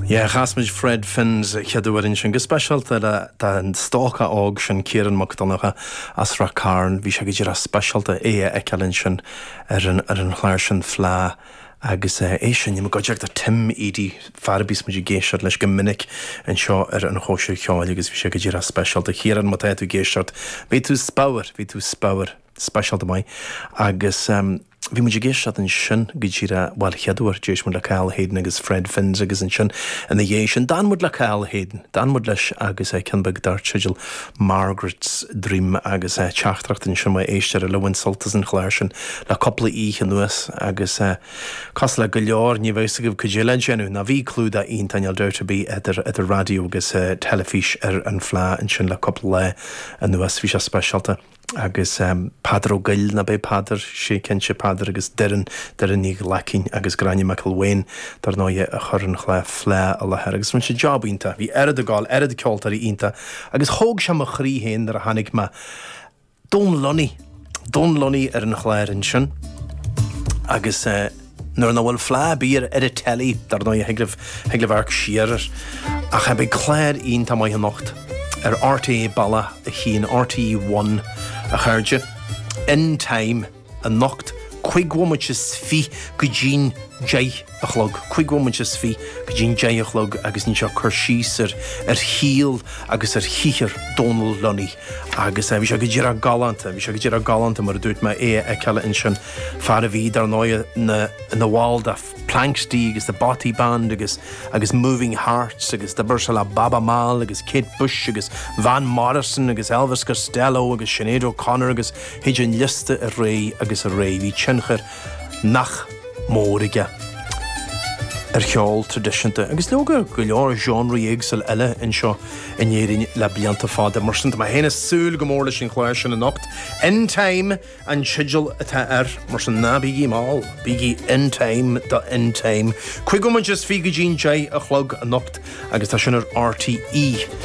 Yeah, chas muid Fred Finns an chéad uair ansin go speisialta don stócach óg sin Ciarán Mac Donncha as Ráth Cairn. Bhí sé go díreach speisialta é a fheiceáil ansin ar an, ar an chlár sin Fleadh agus eh, é ag seinm i gcuideachta Tim Edey, fear a bíos muid ag éisteacht leis go minic anseo ar an chóisir cheoil agus bhí sé go díreach speisialta. Ciarán, má tá tú ag éisteacht, bhí tú as pabhar, bhí tú as pabhar. speisialta maith agus bhí muid ag éisteacht ansin go díreach bhuel an chéad uair d'éist muid le Cathal Hayden agus Fred Finns agus ansin ina dhiaidh sin d'fhan muid le Cathal Hayden d'fhan muid leis agus eh ceann beag dar teideal Margaret's Dream agus eh teachtaireacht ansin ó éisteoir eile a bhain sult as an chlár sin le cúpla oíche anuas agus eh cosúil le go leor ní bheadh a fhios agaibh cad é le déanamh ná bhí clúdach iontach ann an dá thaobh idir idir raidió agus teilifís ar an Fhleadh ansin le cúpla lá anuas bhí sé speisialta. agus Peadar Ó Goill nach b'é Peadar, sé cinnte, Peadar agus Doireann, Doireann Ní Ghlacáin agus Gráinne McElwain, dar ndóigh, a chur an chlár Fleadh i láthair agus rinne siad job iontach. Bhí oiread ag gabháil, oiread ceoltóirí iontach agus thóg sé mo chroí féin nuair a chonaic mé Dónal Lunny, Dónal Lunny ar an chlár ansin agus eh. Nuair nach bhfuil Fleadh ar bith ar an telly, dar ndóigh, thig libh, thig libh amharc siar air. Ach beidh clár iontach maith anocht ar RTÉ bealach a hAon, RTÉ One, a chairde. In Time, anocht, cúig bhomaite is fiche go dtí'n deich a chlog. Cúig bhomaite is fiche go dtí'n deich a chlog agus ní seo cur síos ar, ar shaol agus ar shaothar Dónal Lunny. Agus bhí sé go díreach galánta, bhí sé go díreach galánta, mar a dúirt mé, é a fheiceáil ansin. fear a bhí, dar ndóigh, ina bhall de Planxty agus The Bothy Band agus agus Moving Hearts agus d'oibir sé le Baaba Maal agus Kate Bush agus Van Morrison agus Elvis Costello agus Sinéad O'Connor agus théid an liosta ar aghaidh agus ar aghaidh. Bhí tionchar iontach mór aige ar cheol traidisiúnta agus leoga go leor genre éagsúil eile anseo in Éirinn le blianta fada. Mar sin, tá mé féin ag súil go mór leis an chlár sin anocht. In Time! an teideal atá air, mar sin ná bígí mall, bígí in time do In Time, cúig bhomaite is fiche go dtí an deich a chlog anocht agus tá sin ar RTÉ.